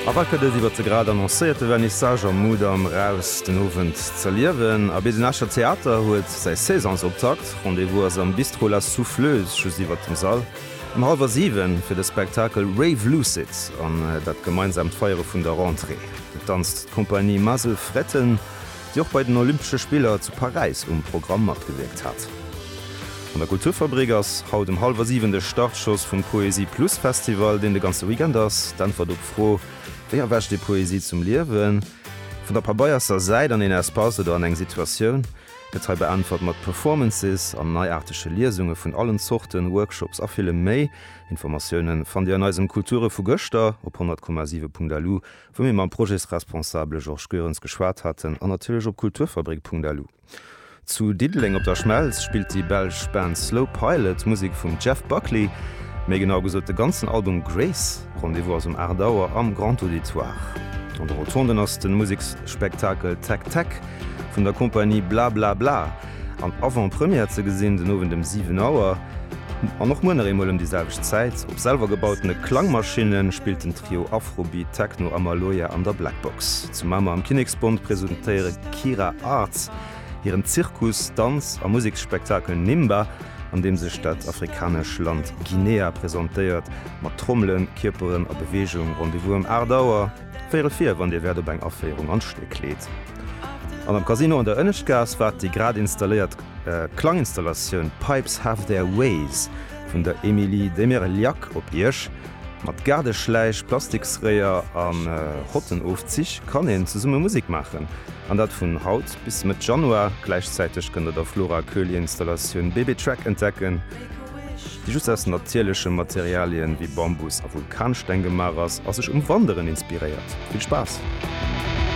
A wat gëtt et iwwer de grad annoncéierte Vernissage am Mudam eraus den Owend z'erliewen? A bis den Escher Theater huet säi Saisonsoptakt, Rendez-vous ass am Bistrot La Souffleuse, just iwwert dem Sall, um hallwer 7 fir de Spektakel Rave Lucid an dat gemeinsaamt Feiere vun der Rentrée. Et danzt d'Compagnie Muzzle Fretten. déi och bei den Olympesche Spiller zu Paräis um Programm matgewierkt hat. An der Kulturfabrik ass haut um hallwer 7 de Startschoss vum Poesie Plus Festival, deen de ganze Weekend ass. D'Äntwert op d'Fro, Wéi erwächt ee Poesie zum Liewen? Vun der pabeierster Säit an een Espace oder an eng Situatioun, gëtt hei beäntwert mat Performances an neiaartege Liesunge vun allen Zorten, Workshops a villem méi. Informatiounen fannt Dir an eisem Kulture vu gëschter op 100,7.lu. wou mir mam Projetsresponsabele Georges Goerens geschwat haten an natierlech op kulturfabrik.lu. Zu Diddeleng op der Schmelz spillt déi belsch Band Slow Pilot Musek vum Jeff Buckley, méi genau gesot de ganzen Album Grace. Rendez-vous ass um 8 Auer am Grand Auditoire. An de Rotonden ass de Museksspektakel Tech Tech vun der Kompanie Bla Bla Bla. an Avant-Première ze gesinn, den Owend ëm 7 Auer an och muer nach eemol ëm déi selwecht Zäit. Op selwer gebautene Klangmaschinne spillt den Trio Afrobeat, Techno a Maloya an der Black Box. Zu Mamer am Kinneksbond presentéiere Kira Arts hiren Zirkus-, Danz a Museksspektakel Nimba, an deem sech dat afrikanesch Land Guinea presentéiert. Mat Trommelen, Kierperen a Beweegung, Rendez-vous ëm 8 Auer. Wéi rët wier, wann Dir wäert op eng Aféierung an d'Stéck kleet. An am Casino an der Ënneschtgaass waart déi grad installéiert Klanginstallatioun Pipes Have Their Ways vun der Emilie Demirliac op Iech. Mat Gaardeschläich, Plastiksréier a Rottenofzich kann een zesumme Musek maachen. An dat vun haut bis Mëtt Januar. Gläichzäiteg kënnt der der Flora Köhli-Installatioun Baby Track entdecken. déi just aus natierleche Materialien wéi Bambus a Vulkansteng gemaach ass a sech um Wanderen inspiréiert. Vill Spaass!